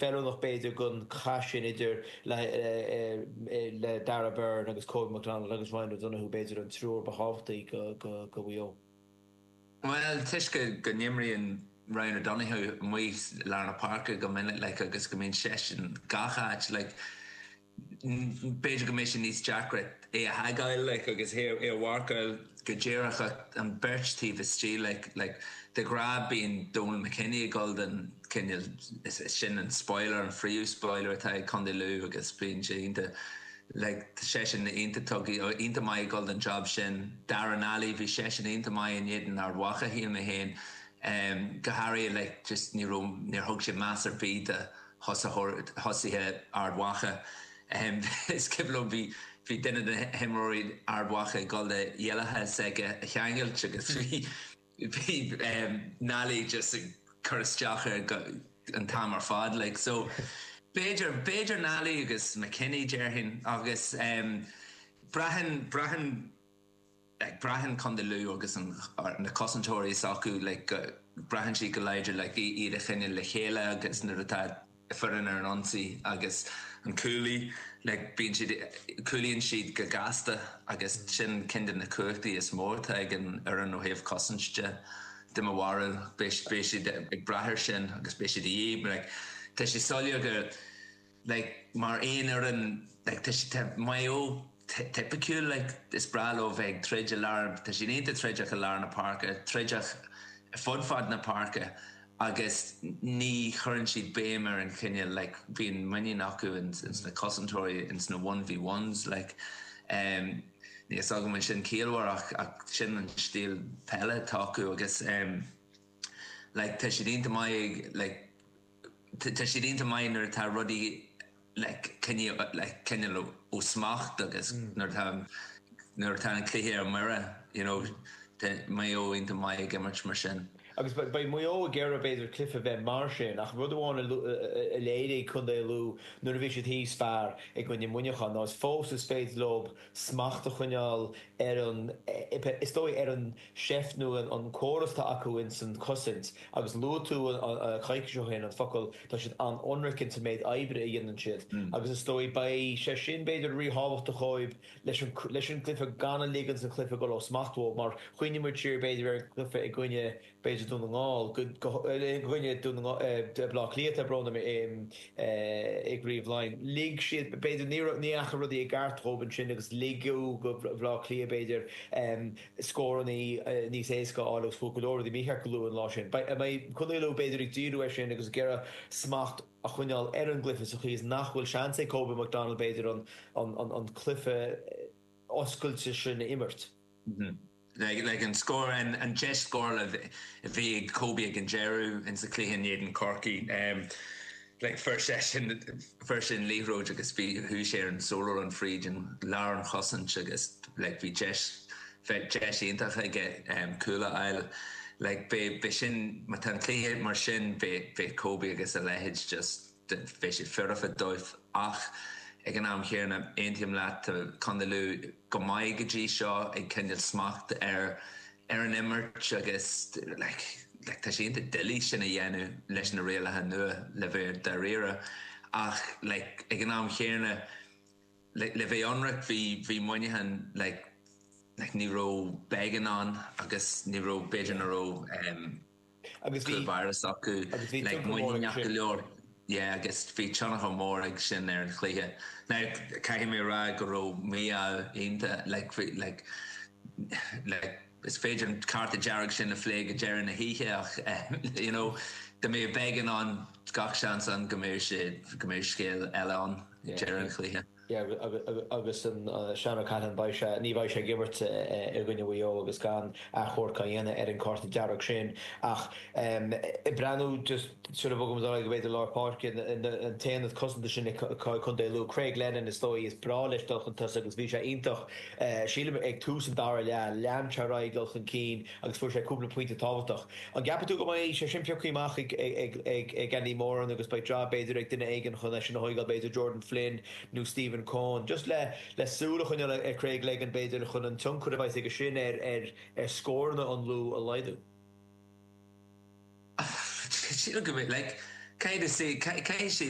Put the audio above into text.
Feiliúnach b'fhéidir gan cath sin idir le Darragh Beirne agus Kobe McDonald agus Ryan O'Donoghue, b'fhéidir an triúr ba thábhachtaí do Mhaigh Eo. Bhuel, toisc go n-imríonn Ryan O'Donoghue amuigh i lár na páirce go minic agus go mbíonn seisean gach áit, B'fhéidir go mbeidh sé níos deacra é a tagáil like agus é a mharcáil go díreach ach an beirt taobh istigh like like de ghnáth bíonn Donal McKenny ag dul don cineál sin an spoiler an phríomh-spoiler atá ag Condae Lú agus bíonn sé iontach like tá seisean iontach tugtha dó iontach maith ag dul don job sin Darragh Nally bhí seisean iontach maith in éadan Ard Mhacha shíl mé féin go háirithe like just ní raibh níor thug sé meas ar bith do thosaitheoir thosaithe Ard Mhacha. Is cuimhin liom, bhí bhí duine de himreoirí Ard Mhacha ag dul le a iallacha s'aige a cheangailt agus bhí bhí Nally just ag cur isteach air an t-am ar fad like so b'fhéidir b'fhéidir Nally agus McKenny déarfainn agus braitheann braitheann Braitheann Condae Lú agus an na cosantóirí s'acu like go braitheann siad go láidir le iad a choinneáil le chéile agus nuair atá foireann ar an ionsaí agus an cúlaí like bíonn siad cúlaíonn siad go gasta agus sin ceann de na cumhachtaí is mó atá ag an fhoireann ó thaobh cosaint de i mo bharúil beidh siad ag brath ar sin agus beidh siad a dhíth like tá sé soiléir go like mar aon fhoireann like tá siad tá Maigh Eo tipiciúil like is breá leo bheith ag troid i lár tá siad iontach troideach i lár na páirce troideach fud fad na páirce agus ní chuireann siad béim ar an chineál like bíonn muinín acu in ins na cosantóirí ins na one v ones like em níl a fhios agam an sin ciallmhar ach ach sin an stíl peile atá acu agus em like tá siad iontach maith ag like Tá siad iontach maith nuair atá rudaí le coinneáil faoi smacht agus nuair atá an cluiche ar mire. You know, tá Maigh Eo iontach maith ag imirt mar sin. Agus beidh Maigh Eo ag iarraidh, b'fhéidir, an cluiche a bheith mar sin. Ach rud amháin a léirigh contae Lú nuair a bhí siad thíos fear i gcoinne Muineachán ná is fós is féidir leo smacht a choinneáil ar an, is dóigh, ar an. seift nó an córas atá acu ins an chosaint agus luaigh tú coicís ó shin an focal, tá siad an-ionraic ins an méid oibre a dhéanann siad agus is dóigh beidh sé sin b'fhéidir ríthábhachtach dhóib leis an cluiche gan a ligean don chluiche dul ó smacht dhóib má chuimhníonn muid siar b'fhéidir ar an cluiche i gcoinne b'fhéidir Dún na nGall i gcoinne Dún na nGall, Blá Cliath brón orm i gCraobh Laighin lig siad b'fhéidir ní dheachaigh rudaí i gceart dhóib ansin agus ligeadh do Bhlá Cliath b'fhéidir. i scórannaí níos éasca a fháil agus fuair go leor rudaí mícheart go luath an lá sin. Beidh Contae Lú, b'fhéidir, ag díriú air sin agus ag iarraidh smacht a choinneáil ar an gcluiche sa chaoi is nach bhfuil seans ag Kobe McDonald, b'fhéidir, an cluiche oscailte sin a imirt. Like an scór an deis scórála a bhí ag Kobe ag an deireadh sa chluiche in éadan Chorcaí. Like fuair seisean fuair seisean an liathróid agus bhí sé ar an solo run fríd lár an chosaint agus like bhí deis bheith deis iontach aige cúl a fháil. Like beidh beidh sin má tá an cluiche mar sin beidh beidh Kobe agus a leithéid just beidh sé foirfe dóibh ach ag an am chéanna aontaím leat tá Contae Lú go maith go dtí seo ag coinneáil smacht ar ar an imirt agus like tá sé iontach doiligh sin a dhéanamh leis na rialacha nua le bheith dáiríre ach like ag an am chéanna like le bheith ionraic bhí bhí Muineachán like like ní raibh Beggan ann agus ní raibh b'fhéidir na raibh agus bhí. McEneaney acu. Agus bhí tionchar mór aige sin. Like muiníneach go leor. Yeah agus bhí tionchar mór aige sin ar an chluiche. Now caithfidh mé a rá go raibh Maigh Eo iontach like bhí like like is féidir an cárta dearg sin a phlé go deireadh na hoíche ach eh you know dá mbeadh Beggan ann gach seans ann go mbeadh sé go mbeadh scéal eile ann ag deireadh an chluiche. agus Sean Callaghan beidh sé, ní bheidh sé ag imirt i gcoinne Mhaigh Eo agus gan achomharc á dhéanamh ar an cárta dearg sin ach ag breathnú just sula mbogann muid ar aghaidh go b'fhéidir lár páirce an t-aonad cosanta sin ag Co Lú. Craig Lennon is dóigh is breá leis dul chun tosaigh agus bhí sé iontach, sílim ag tús an dara leath, lean sé ar aghaidh ag dul chun cinn. Agus fuair sé cúpla pointe tábhachtach. An gceapann tú go mbeidh sé sin pioctha amach ag Andy Moran agus beidh jab b'fhéidir ag duine éigin chun eisean a mharcáil, b'fhéidir Jordan Flynn nó Stephen Coen. Just le le súil a choinneáil ar Craig Lennon b'fhéidir chun an tionchar a bheas aige sin ar ar ar scóranna an Lú a laghdú. Sílim go mbeidh like cad is é cad cad is é